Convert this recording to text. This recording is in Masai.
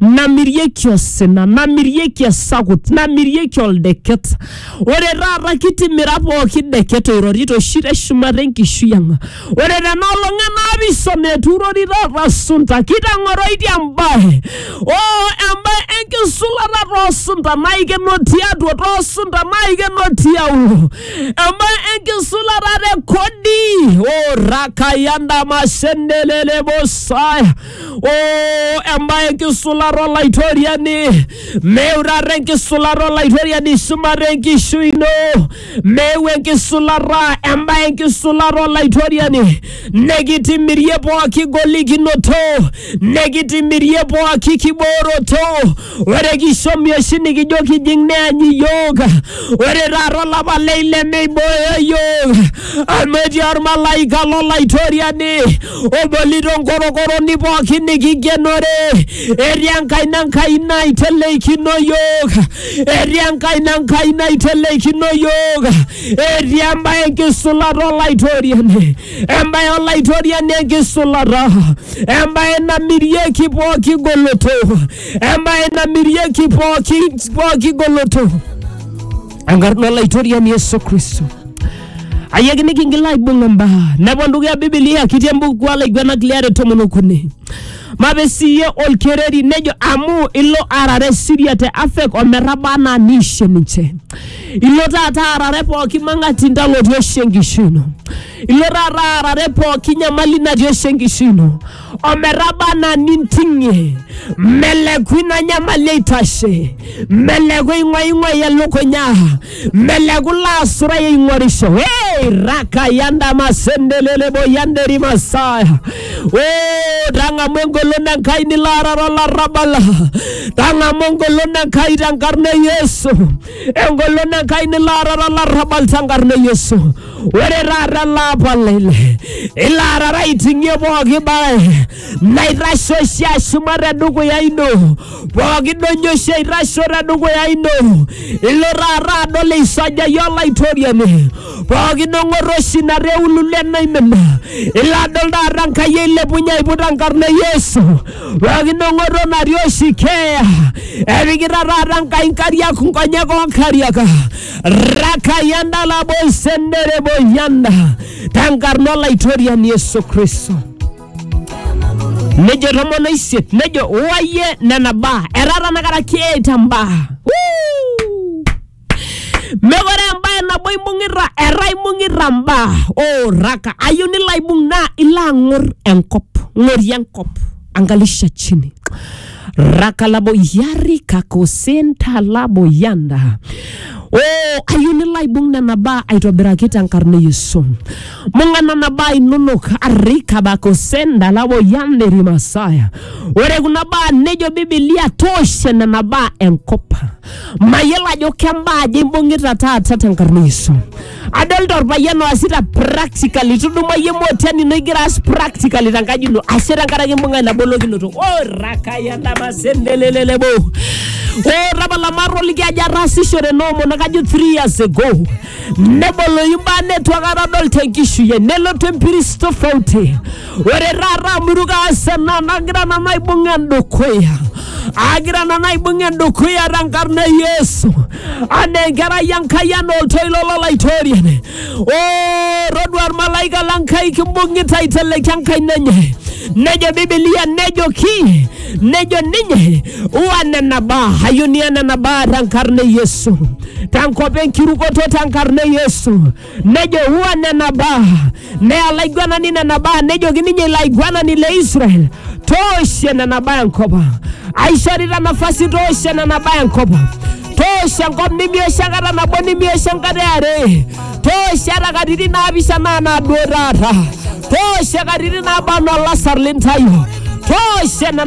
namirieki osina namirieki esakut namirieki oldeket ore taata kitimira pooki deket oirorito oshi teshumata enkishui ang ore tena olong enaapishana etuurori taata sunta kitang'oroitie embae oo embae enkisulata toosunta naikeno tiatua toosunta naikeno tiaulo embae enkisulata te kodi oo rakayandamashendelelebosaya Oh, embaye enkisulata olaitoriani meu taata enkisulata olaitoriani shumata enkishui ino meu enkisulata embaye enkisulata olaitoriani nekitimirie pooki golikinoto nekitimirie pooki kibooroto ore kishomi oshi nikijo kijing neany iyiook ore taata olapa le ile meibooyo iyiook amu etii ormalaika lolaitoriani obolito nkorokoroni pookin nikigenore etii enkaina Enkai naiteleikino iyiook etii enkaina Enkai naiteleikino iyiook etii embaye enkisulata olaitoriani embaye olaitoriani enkisulata, embaye namirieki pooki goloto, embaye namirieki pooki pooki goloto. Enkarna olaitoriani Yesu Kristo. Ayaki nikingila aibung' imbaa. Nepon dukuya Biblia kitii embuku olaiguanak liare tomon okuni. Mape siiyie olkereri nejo amu ilo aarare Siria te Afek ometaba anaa niishe ninche. Ilo taata aarare pooki mang'ati ndalotie oshi enkishui ino. Ilo taata aarare pooki nyamali natii oshi enkishui ino ometaba anaa ninting'ie. Meleku ina nyamali eitashe, meleku eing'uaing'uai elukunya. Meleku laasurai eing'orisho. Hey, raka yanda masendelelebo yanderi masaya. Oh, tang'amu engolon Enkai nilo arara olarrabal. Tang'amu engolon Enkai tenkarna e Yesu. Engolon Enkai nilo arara olarrabal tenkarna e Yesu. Ore taata ele apa lele, ilo arara aiting'ie pooki bae. naitasho oshi ashuma tedukuya ino pooki doinyo oshi aitasho tedukuya ino ilo taata adol eisajayie olaitoriani pooki dong'oto oshi natii eululu enaimin ilo adol taata Enkai eilepunye aiput enkarna e Yesu pooki dong'oto natii oshi keeya epikita taata Enkai inkariak nkonyek oonkariak rakayanda laboisendere boyanda tenkarna olaitoriani Yesu Kristo nejo tomon oisiet nejo uayie nena baa etaa tanakata keeta mbaa Woo! mekore embae nabo imbung'ita etaa imbung'ita mbaa oraka ayieu nilo aibung naa ilo ang'or enkop ng'orie enkop angalisha chini rakalabo yari kakosenta labo yanda o ayieu nilo aibung nena baa aitobiraki tenkarna e yesu mbung'a nena baa inonok arikabakosenda labo yanda erimasaya ore kuna baa nejo bibilia tooshe nena baa enkop mayiolo ajo kembaa aja imbung'ita taata tenkarna e yesu adolta orpayian oasita practically tuduma yie motian ino igira aas practically tenkaji ino ashe tenkaraki imbung'a ina bolokinoto orakayandamasendelelelebo o tapala matoliki ajo ataasishore noomono kajo three years ago neboloyu mbaa netu akata adol tenkishui ai nelotu empiris tofauti ore taata amu itu kaas ena nagira nanu aibung endukuya agira nanu aibung endukuya tenkarna e yesu anaa enkerai enkai anaa oltoilo lolaitoriani o todua ormalaika lenkai kimbung'ita aiteleki enkaina enye nejo bibilia nejoki nejo ninye uwa nena baa ayunia nena baa tenkarna e yesu tenkop enkirukoto tenkarna e yesu nejo huwa nena baa neya laiguanani nena baa nejoki ninye ilo aiguanani le Israel tooshe nena baa enkop ang aishorita nafasi tooshe nena baa enkop ang tooshe enkop nimioshe enkata nabo nimioshe enkata eare tooshe ata katitin naapishana anaa duo taata tooshe katitin naaba anaa olasar lintayo tooshe nena